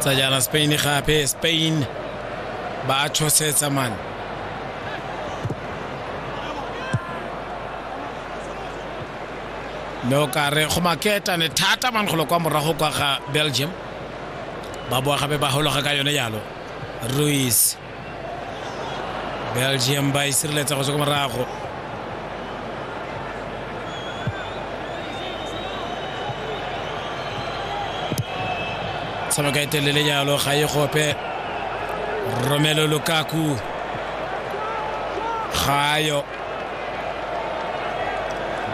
tsa jaana spain gape spain ba a tshosetsa mane mme o ka re go maketane thata man golo kwa morago kwa ga belgium ba boa gape ba hologa ka yone yalo ruis belgium ba e sireletsa go tswa ko morago tshameka e telele jalo ga e gope romelo lukaku gayo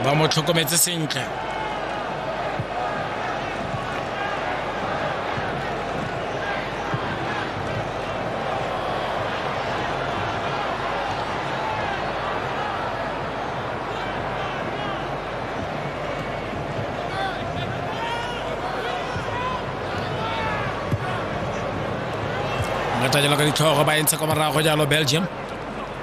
ba mo tlhokometse sentle ngata jalo ka ditlhogo ba entshe kwa morago jalo belgium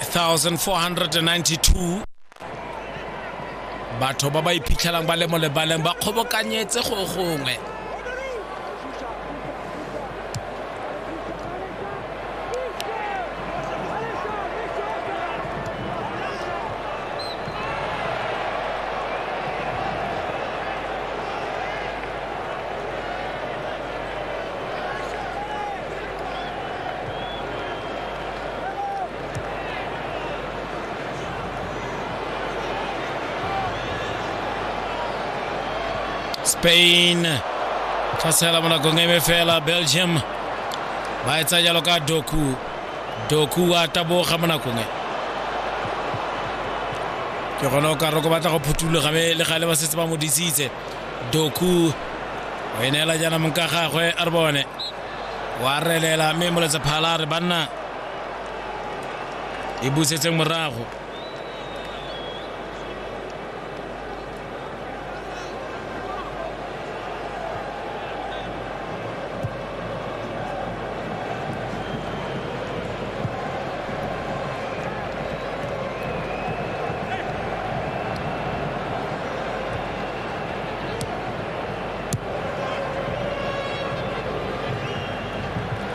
1492 batho ba ba iphitlhelang ba le mo lebaleng ba kgobokanyetse go gongwe spain tshwasela mo nakong e me fela belgium ba e tsaya jalo ka doku doku a taboga mo nakong e ke gone o ka roko batla go phuthuloga me le gale ba setse ba mo disitse doku o e neela jaana mong ka gagwe a re bone wa relela mme moletse phala re banna e busetseng morago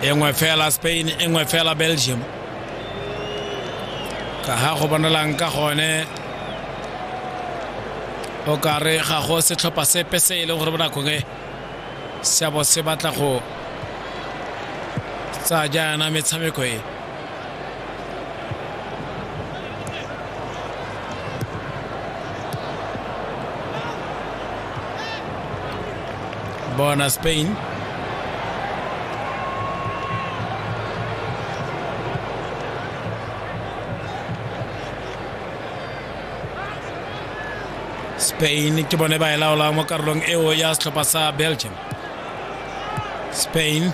e nngwe fela spain e nngwe fela belgium ka ga go bonalang ka gone o ka re ga go setlhopha sepe se e leng gore bonakong e seabo se batla go tsaya jaana metshameko e Bona Spain. Spain ke bone ba e laolang mo karolong eo ya setlhopha sa Belgium. Spain.